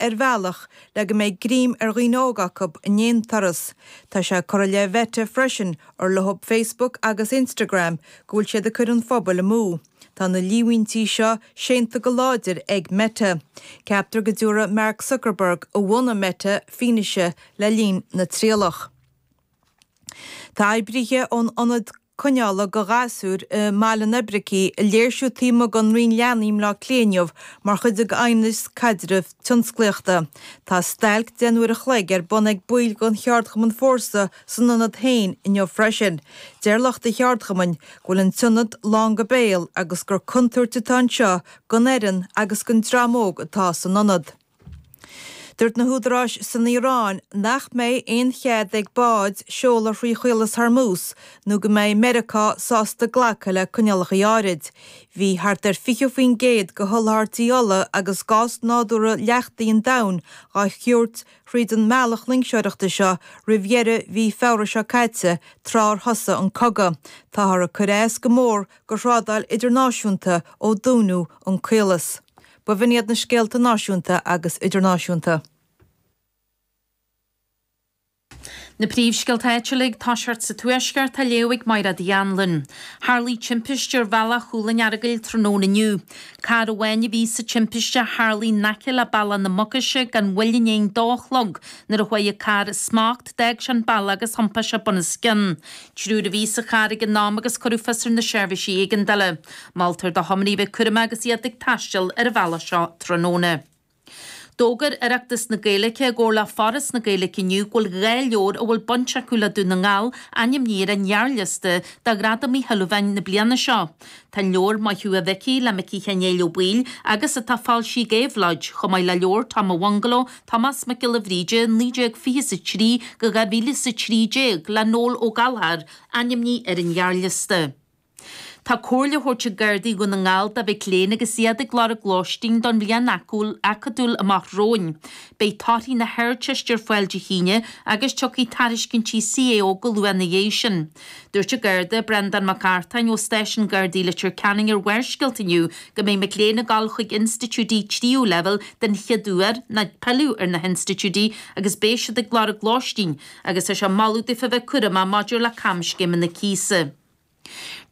ar bhealach le go mbeidh greim ar dhaoine óga acu in aon turas. Tá sé curtha i leith Meta freisin, ar leothab Facebook agus Instagram, go bhfuil siad ag cur an phobail amú. Tá na líomhaintí seo séanta go láidir ag Meta. Ceaptar go dtabharfaidh Mark Zuckerberg, a bhunaigh Meta, fianaise le linn na trialach. Tá oibrithe ón Ionad. Coinneála go ghasúir i mBaile an Oibricigh ag léirsiú taobh amuigh den Roinn Leanaí i mBleá Cliath inniu mar chuid de Aighneas Caidreamh Tionsclaíochta. Tá stailc deich n-uair a chloig ar bun ag baill den cheardchumann Fórsa san ionad féin inniu freisin. Deir lucht an cheardchumainn go bhfuil an t-ionad lán go béal agus gur contúirt atá anseo don fhoireann agus don dream óg atá san ionad. Dúirt na húdaráis san Iaráin nach mbeidh aon chead ag báid seoladh thrí Chaolas Hormuz nó go mbeidh Meiriceá sásta glacadh le coinníollacha áirid. Bhí thart ar 20% de sholáthairtí ola agus gás nádúrtha leachtaithe an domhain dhá thabhairt thríd an mbealach loingseoireachta seo roimh dheireadh mhí Feabhra seo caite tráth ar thosaigh an cogadh. Táthar ag cur as go mór go thrádáil idirnáisiúnta ó dúnadh an caolas. B'in iad na scéalta náisiúnta agus idirnáisiúnta. Na príomhscéalta áitiúla ag toiseacht sa Tuaisceart á léamh ag Máire Uí Annluain. Tharlaigh timpiste ar Bhealach Chúil an Earagail tráthnóna inniu. Carr amháin a bhí sa timpiste a tharlaigh in aice le Bealach na Mucaise gan mhoill i ndiaidh an dó a chlog nuair a chuaigh an carr as smacht, d'fhág sé an bealach agus thiompaigh sé bunoscionn. Triúr a bhí sa charr ag an am agus cuireadh fios ar na seirbhísí éigeandála. Moltar do thiománaithe bheith cúramach agus iad ag taisteal ar an bhealach seo tráthnóna. D'fhógair Oireachtas na Gaeilge i gcomhar le Foras na Gaeilge inniu go bhfuil dhá leabhar a bhfuil baint acu le Dún na nGall ainmnithe ar an ghearrliosta do Ghradam Uí Shúilleabháin na bliana seo. Tá an leabhar Maith Thú a Mhicí le Micí Sheáin Néill Ó Baoill agus atá foilsithe ag Éabhlóid, chomh maith le leabhar Tom a' Bhungaló, Tomás Mac Giolla Bhríde 1923 go 2013 le Noel Ó Gallchóir, ainmnithe ar an ghearrliosta. Tá comhairle á thabhairt ag Gardaí Dhún na nGall do mhic léinn agus iad ag lorg lóistín don bhliain acadúil amach romhainn. Beidh torthaí na hArdteiste ar fáil Dé hAoine agus tiocfaidh tairiscintí CAO go luath ina dhiaidh sin. Dúirt an Garda Breandán Mac Artáin ó Stáisiún Gardaí Leitir Ceanainn ar Bharrscéalta inniu go mbeidh mic léinn ag dul chuig institiúidí tríú leibhéal den chéad uair ná ag pilleadh ar na hinstitiúidí agus beidh siad ag lorg lóistín agus tá sé ag moladh daofa bheith cúramach maidir le camscéimeanna cíosa.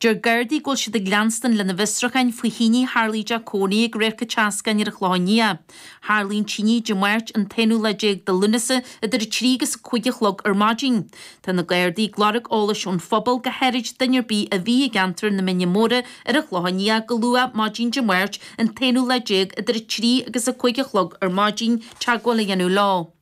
Deir Gardaí go bhfuil siad ag leanstan lena bhfiosrúcháin faoi thine a tharla i dteach cónaí ag Radharc an tSeascáin ar an Chlochán Liath. Tharla an tine Dé Máirt, an t-aonú lá déag de Lúnasa, idir a trí agus a cúig a chlog ar maidin. Tá na Gardaí ag lorg eolais ón phobal go háirid duine ar bith a bhí i gceantar na Mine Móra ar an Chlochán Liath go luath maidin Dé Máirt, an t-aonú lá déag, idir a trí agus a cúig a chlog ar maidin, teagmháil a dhéanamh leo.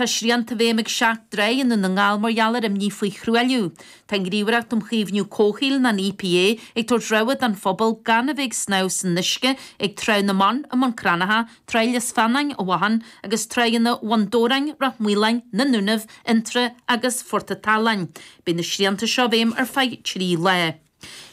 Tá srianta i bhfeidhm ag seacht dtráigh i nDún na nGall mar gheall ar imní faoi thruailliú. Tá an Ghníomhaireacht um Chaomhnú Comhshaoil, an EPA, ag tabhairt rabhadh don phobal gan a bheith ag snámh san uisce ag Tráigh na mBan i mBun Cranncha, Tráigh Lios Feannáin i bhFathan agus Tráigheanna Bhun Dobhráin, Ráth Maoláin, na nDúnaibh, Fhionntrá agus Phort a' tSalainn. Beidh na srianta seo i bhfeidhm ar feadh trí lá.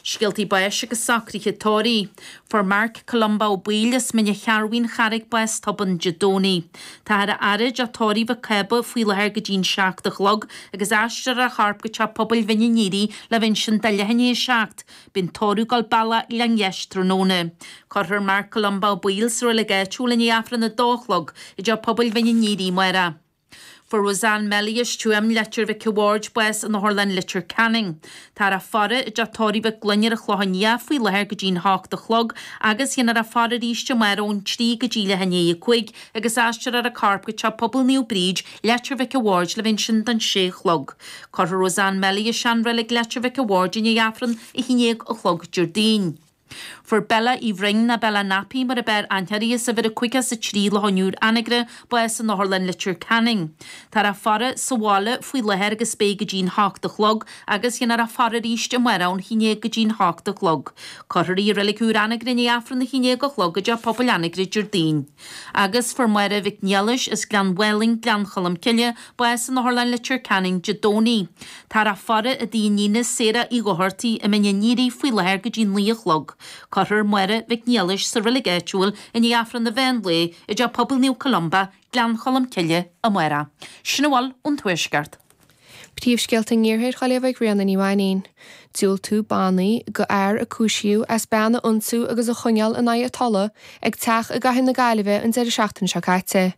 Scéaltaí báis agus socruithe tórraimh. Fuair Mark Columba Ó Baoill as Mín an Chearrbhaigh, An Charraig bás tobann Dé Domhnaigh. Táthar á fhaire i dteach tórraimh Mhic Cába faoi láthair go dtí an seacht a chlog agus aistreofar a chorp go teach pobail Mhín an Aoire le bheith ansin do leath i ndiaidh a seacht. Beidh an tórramh ag gabháil bealach Ghleann Gheis tráthnóna. Cuirfear Mark Columba Ó Baoill sa reilig áitiúil i ndiaidh Aifreann a dó a chlog i dteach pobail Mhín an Aoire amárach. Fuair Roseanne Melly as Tuaim, Leitir Mhic a' Bhaird bás in Otharlann Leitir Ceanainn. Táthar á faire i dteach tórraimh Mhic Gloinn ar an Chlochán Liath faoi láthair go dtí'n h-ocht a chlog agus dhéanfar a faire arís amáireach ón trí go dtí leath i ndiaidh a cúig agus aistreofar a corp go Teach Pobail Naomh Bríd, Leitir Mhic a' Bhaird le bheith ansin don sé a chlog. Cuirfear Roseanne Melly i seanreilig Leitir Mhic a' Bhaird i ndiaidh Aifreann a haon déag a chlog Déardaoin. Fuair Bella Uí Bhroin ná Bella Nappy mar a b'fhearr aithne uirthi, as uimhir a caoga is a trí Loch an Iúir, Anagaire, bás in Otharlann Leitir Ceanainn. Táthar á faire sa bhaile faoi láthair agus beidh go dtí'n h-ocht a chlog agus dhéanfar a faire arís amárach ón haon déag go dtí'n h-ocht a chlog. Cuirfear í i reilig úr Anagaire i ndiaidh Aifreann a haon déag a chlog i dTeach Pobail Anagaire Déardaoin. Agus fuair Máire Mhic Niallais as Gleann Mhaoilinn, Gleann Cholm Cille, bás in Otharlann Leitir Ceanainn Dé Domhnaigh. Táthar á faire i dtigh a hiníne Sarah Uí Dhochartaigh i Mín an Aoire faoi láthair go dtí naoi a chlog. Cuirfear Máire Mhic Niallais sa reilig áitiúil i ndiaidh Aifreann an mheán lae i dTeach Pobail Naomh Columba, Gleann Cholm Cille, amárach. Sin a bhfuil ón Tuaisceart. Príomhscéalta an Iarthair dhá léamh ag Ríona Ní Mhainín. Diúltaíodh bannaí do fhear a cúisíodh as bean a ionsú agus a choinneáil in aghaidh a tola ag teach i gcathair na Gaillimhe an deireadh seachtaine seo caite.